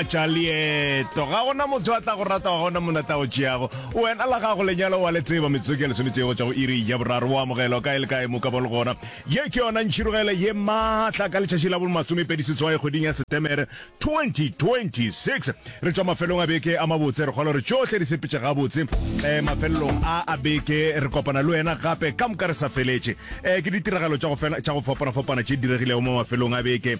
tša leeto ga gona motho a tla go rata ga gona mona tla o tšeago wena la gago lenyalo wa le tseba metsotso ke lesometšego tša go iri ya boraro o amogelo kae le kae mo ka bo le gona ye ke yona ntšhirogelo ye maatla ka letšatši la bolmasomepedi setswae kgweding ya setemere 2026 re tšwa mafelong a beke a mabotse re kgolo re tšohle di sepetše gabotse um mafelelong a a beke re kopana le wena gape ka moka re sa feletše um ke ditiragalo tša go fapana-fapana tše diregilego mo mafelong a beke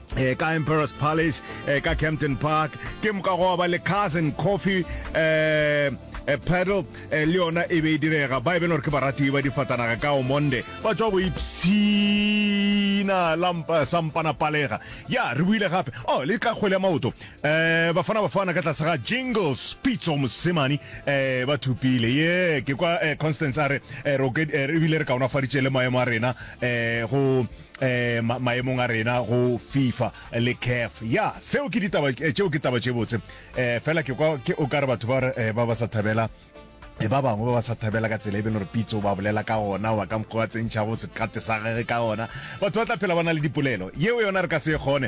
eh, ka emperors palace eh, ka campton park ke moka go ba le cousin coffee eh, eh, pedal eh, le yona e be e direga ba e beng gore ke barati ba difatanaga ka o monde ba tswa go ipshina lampa sampana palega ya re buile gape o oh, le ka kgwele ya maoto um bafana bafana ka tlase ga jingles pitso mosemane um ba thupile ye ke kwa eh, constance a re eh, re bile re kaonafaditše le maemo a rena um go um maemong a rena go fifa le caf ya seo ke ditaba tšeo ke taba tše botse um fela ke kwa ke o ka re batho ba ba sa thabela e ba bangwe ba ba sa thabela ka tsela e bele gore pitso ba bolela ka gona wa ka mokgwa wa tsentšhago sekate sa gage ka gona batho ba tla phela ba na le dipolelo yeo yona re ka se e kgone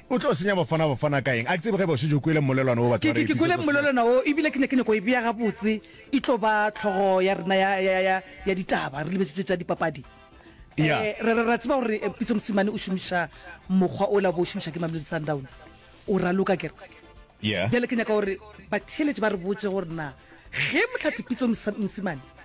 O tlo senya Bafana Bafana ka eng? A ke tsebe ge eba o šetše o kwele mmolelwana wo batho ba re Ke kwele mmolelwana wo ebile ke ne ke nyaka go e bea gabotse e tlo ba tlhogo ya rena ya, ya, ya, ya ditaba re lebetšitše tša dipapadi. Yeah. Eh, re, re, ra tseba gore eh, Pitso Mosimane o šomiša mokgwa o la bo o šomiša ke Mamelodi Sundowns. O ra loka ke re. Yeah. Bjale ke nyaka gore batheeletši ba re botše gore na ge Motlhathi Pitso Mosa- Mosimane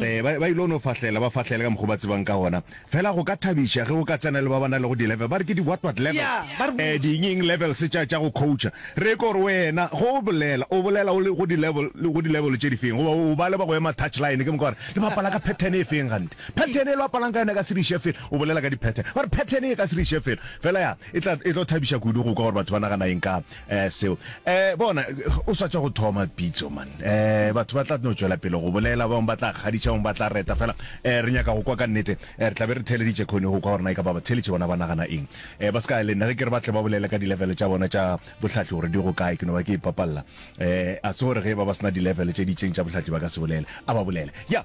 Ee, ba, ba il'o no fahlela, ba fahlele ka mokg'o ba tsebang ka gona. Fela go ka thabiša ge o ka tsena le ba ba na lego di-level, ba re ke di-what-what Ya, levels, ba re eh, botša. di'ng-ing levels tša, tša go coacha. Re ko gore wena, ge o bolela, o bolela o le go di-level, le go di-level tše di feng? Goba o ba le ba go ema touch line, ke moka wa re, le bapala ka pattern e feng gante? Pattern e le bapalang ka yona e ka se re iše felo. O bolela ka di-pattern. Ba re pattern e ka se re iše felo. Fela ya, e tla, e tlo thabiša kudu go kwa gore batho ba nagana eng ka, Eh, seo. Eh, bona, o swatša go thoma pitso, man. Eh, batho ba tla no tšwela pele go bolela, bang ba tla kgadiša, bang ba tla reta. Fela, eh, re nyaka go kwa ka nnete. Eh, re tla be re theleditše khone go kwa gore na e ka ba batheletše bona ba nagana eng. Eh, ba se ka le nna ge ke re ba tle ba bolele ka dilevele tša bona tša bohlatli gore di go kae, ke no ba ke ipapalela. Eh, a se gore ge ba ba sena dilevele tše di itseng tša bohlatli ba ka se bolele. A ba bolele. Ya.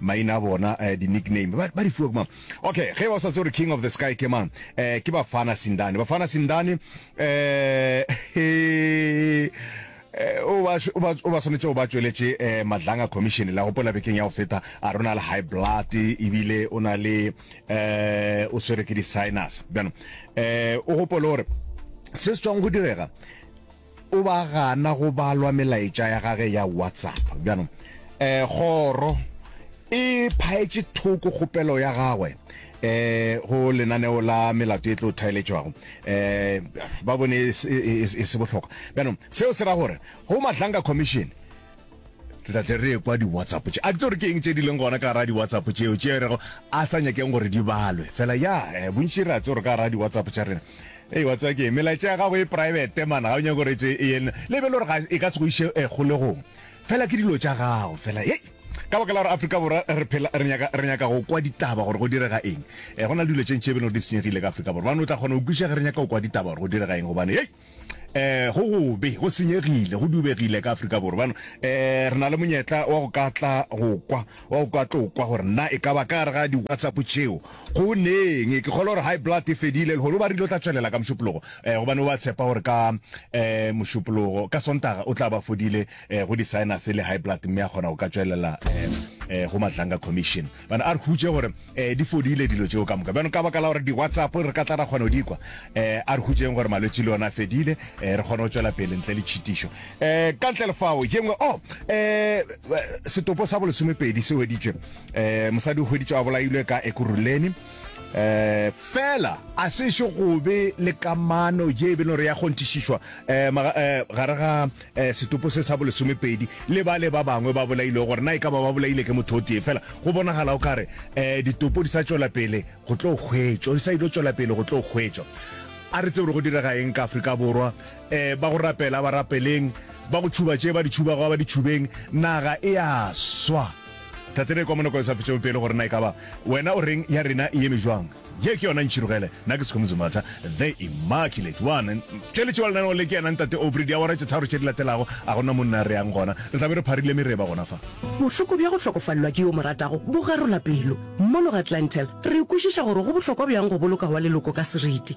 maina a bona uh, di nickname ba, ba di fiwa kumang okay ge ba sa tsore king of the sky ke mang uh, ke bafana sindane bafana sindane uh, Eh, o ba swanetse o ba tsweletše um madlanga commission la gopola bekeng ya go feta a rona le high blood ebile o na le um o swere ke di-sinus bjano um o gopole gore se se tswang go direga O ba gana go balwa melaetša ya gage ya WhatsApp. Bjanong, eh, kgoro e phaetše thoko kgopelo ya gagwe eh go lenaneo la melato e tlo thaeletšwago eh ba bone e se- e e- e se bohlokwa bjanong seo se ra gore go matlanga commission re tla tle re ekwa di-whatsapp tše a ke tse gore ke eng tše di leng gona ka gara di-whatsapp tšeo tše e rego a sa nyakeng gore di balwe fela ya eh, bontši re a tse gore ka gara di-whatsapp tša rena Ee, wa tseba ke melaetša ya gago e private man ga o nyako gore tse e yen le be le gore ga e ka se go iše eh, kgolegong fela ke dilo tša gago fela e ka baka la gore afrika borwa re phela re nyaka re nyaka go kwa ditaba gore go direga eng eh go na le dilo tše ntše e be le di senyegile ka afrika borwa bane o tla kgona go kwiša ge re nyaka go kwa ditaba gore go direga eng gobane ei eh go gobe go senyegile go dubegile ka afrika borwa bano eh re na le monyetla wa go ka tla go kwa Wa o ka tlo kwa gore na e ka ba ka gare ga di WhatsApp tšeo go neng. Ke kgolo gore high blood e fedile lehono ba rile o tla tšwelela ka mošupologo gobane o ba tshepa gore ka mošupologo ka sontaga o tla ba fodile go di sinus le high blood mme a kgona go ka tšwelela go Madlanga commission. Bana a re hutše gore di fodile dilo tšeo ka moka bjano ka baka la gore di WhatsApp re ka tla ra kgona go di kwa a re hutšeng gore malwetši le ona a fedile re kgone go tšwela pele ntle le tšhitišo. Eh, ka ntle lefao ye nngwe oh eh setopo sa bolesomepedi se hweditšwe eh mosadi o hweditšwe a bolailwe ka ekuruleni eh fela a se še go be le kamano ye e be nore ya kgonthišišwa eh, eh gare ga eh, setopo se sa bolesomepedi le ba le ba bangwe ba bolailwe gore na e ka ba ba bolaile ke motho o tee fela go bonagala o kare eh ditopo di sa tšwela pele go tlo hwetšwa di sa ile tšwela pele go tlo hwetšwa a re tsebore go direga eng ka Afrika Borwa Eh, ba go rapela ba rapeleng ba go tšhuba tše ba di tšhubago ba di tšhubeng naga e a swa tatene kwa monoko e sa fetšego pele gore na e ka ba wena o reng ya rena e eme jwang ye ke yona ntšhirogele na ke sekgomo zematha the immaculate one tšweletše wa lenaneo le ke yena ntate obri diawara tše tharo tše di latelago a gona monna re yang gona re tla be re pharile mereba gona fa Bohloko bja go hlokofalelwa ke yo mo ratago bo garola pelo. Mono ga Clientele, re kwešiša gore go bohlokwa bjang go boloka wa leloko ka seriti.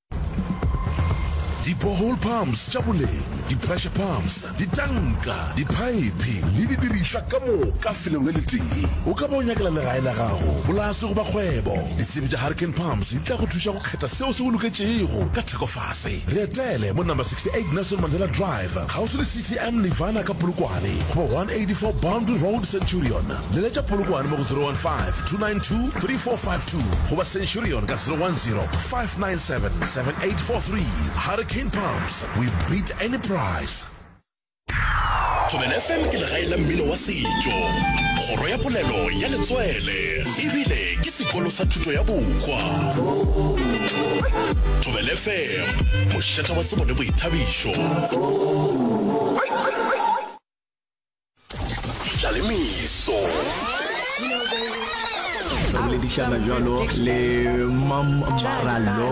di-borehole pumps tša boleng di-pressure pumps ditanka diphaephe le didirišwa ka moka felong le letee o ka ba o nyakela legae la gago polase goba kgwebo ditsebi tša hurricane pumps di tla go thuša go kgetha seo se go loketšego ka thekofase re etele mo number 68 nelson mandela drive kgauswi le ctm nirvana ka polokwane goba 184 boundary road centurion leletša polokwane mo go 015 292 3453 2 goba centurion ka 010 597 7843 hurricane pumps we beat any price Thobela FM ke legae la mmino wa setšo, kgoro ya polelo ya letswele ebile ke sekolo sa thuto ya bokwa. Thobela FM, mošata wa tsebo le boithabišo. Ditlalemeso. Re boledišana jalo le Mam Marallo.